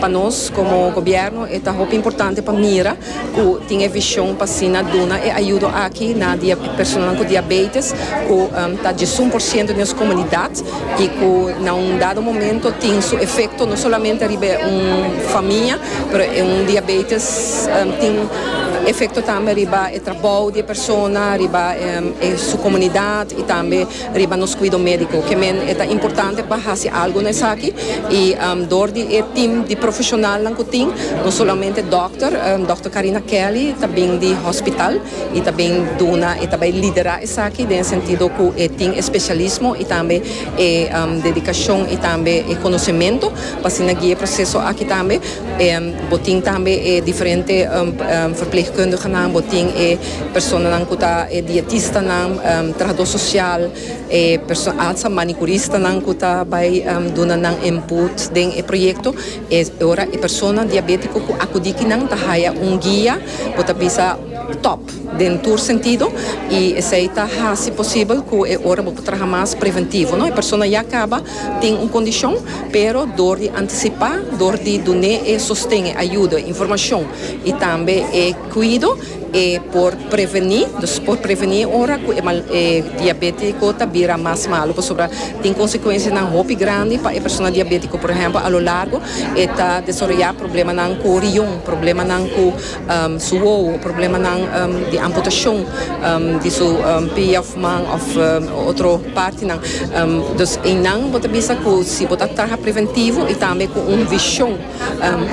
Pa nos como gobierno e ta hopi importante pa mira cu tin e vision pa asina duna e ayudo aki na personanan cu diabetes cu ta djesun por ciento di nos comunidad y cu na un dado momento tin su efecto no solamente riba un famia pero un diabetes tin efecto tambe riba e trabao di e persona riba su comunidad y tambe riba nos cuido medico que men eta importante pa haci algo na esaki y door di e team di profesionalnan cu tin no solamente doctor Doctor Carina Kelly ta bin di hospital y ta bin duna y ta bay lidera esaki den e sentido cu e tin e specialismo y tambe e dedicacion y tambe e conocemento pa asina guia e proceso aki tambe bo tin tambe e diferente verpleegkundigenan bo tin e personanan cu ta e dietistanan, trahador social, e perso, alza manicuristanan cu ta bay duna nan input den e proyecto. E ora e persona diabetico cu acudi aki nan ta haya un guia cu ta bisa top den tur sentido y esey ta haci posibel cu e ora bo por traha mas preventivo no. E persona ya caba tin un condicion pero door di anticipa, door di dun'e e sosten, e ayudo, e informacion y tambe e cuido, E por prevení, dus por prevení ora ku e mal e diabétiko ta bira mas malu pasobra tin konsekuensianan hopi grandi pa e persona diabétiko. Por ehèmpel, a lo largo e ta desoroyá problemanan ku rion, problemanan ku su wowo, problemanan di amputashon di su pia òf man òf otro partinan. Dus einan bo ta bisa ku si bo ta traha preventivo i tambe ku un vishon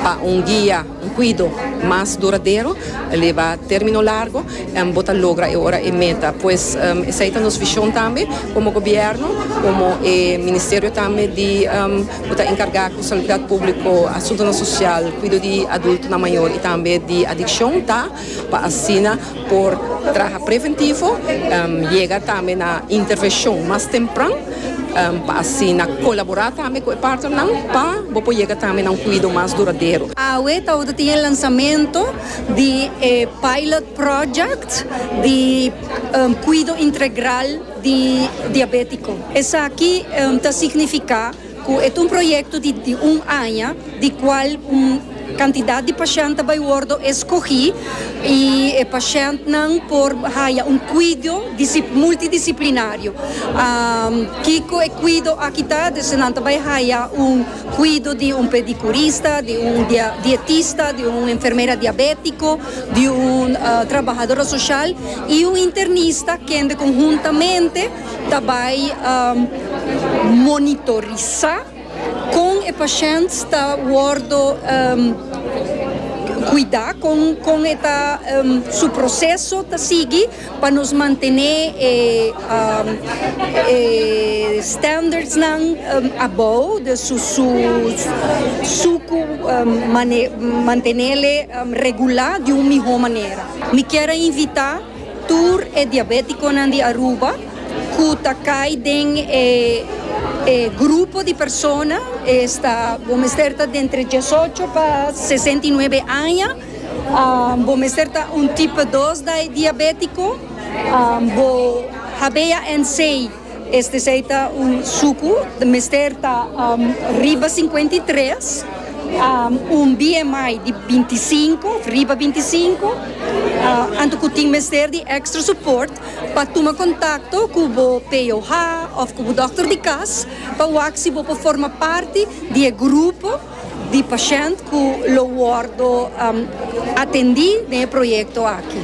pa un guia, Un cuido mas duradero ta leba termino largo en bo ta logra e ora e meta pues esai ta nos vision tambe como gobierno como e ministerio tambe di cu ta encarga cu saludad publico asuntonan social cuido di adultonan mayor y tambe di adiccion ta pa asina por traha preventivo yega tambe na intervenshon mas tempran pa asina kolaborá tambe ku e partnernan pa bo por yega tambe na un kuido mas duradero. Awe ta ora tin e lansamentu di e pilot project di kuido integral di diabétiko. Esaki ta signifiká. Cu e ta un proyecto di di un aña, di cual un cantidad di pashent ta bay wordo escogi y e pashentnan por haya un cuido multidisciplinario. Kico e cuido aki ta? Des nan ta bay haya un cuido di un pedicurista, di un dietista, di un enfermera diabetico, di un trabahadora social y un internista kende con huntamente ta bai monitorisá kon e pashènt ta wòrdu kuidá, kon e ta su proseso ta sigui pa nos mantené e standardsnan abou di su ku mantenel regulá di un mihó manera. Mi kier a invitá. Tur e diabeticonan di Aruba cu ta cay den e e grupo di persona esta bo mester ta dentre diesocho pa sesenta y nuebe aña, bo mester ta un tipo dos diabetico, bo habea N seis. Este esei ta un suku, mester ta riba sinkuenta i tres, un BMI di binti i sinku òf riba binti i sinku, anto ku tin mester di èkstra supòrt pa tuma kontakto ku bo POH òf ku bo dòkter di kas pa wak si bo por forma parti di e grupo di pashènt ku lo wòrdu atendí den e proyekto aki.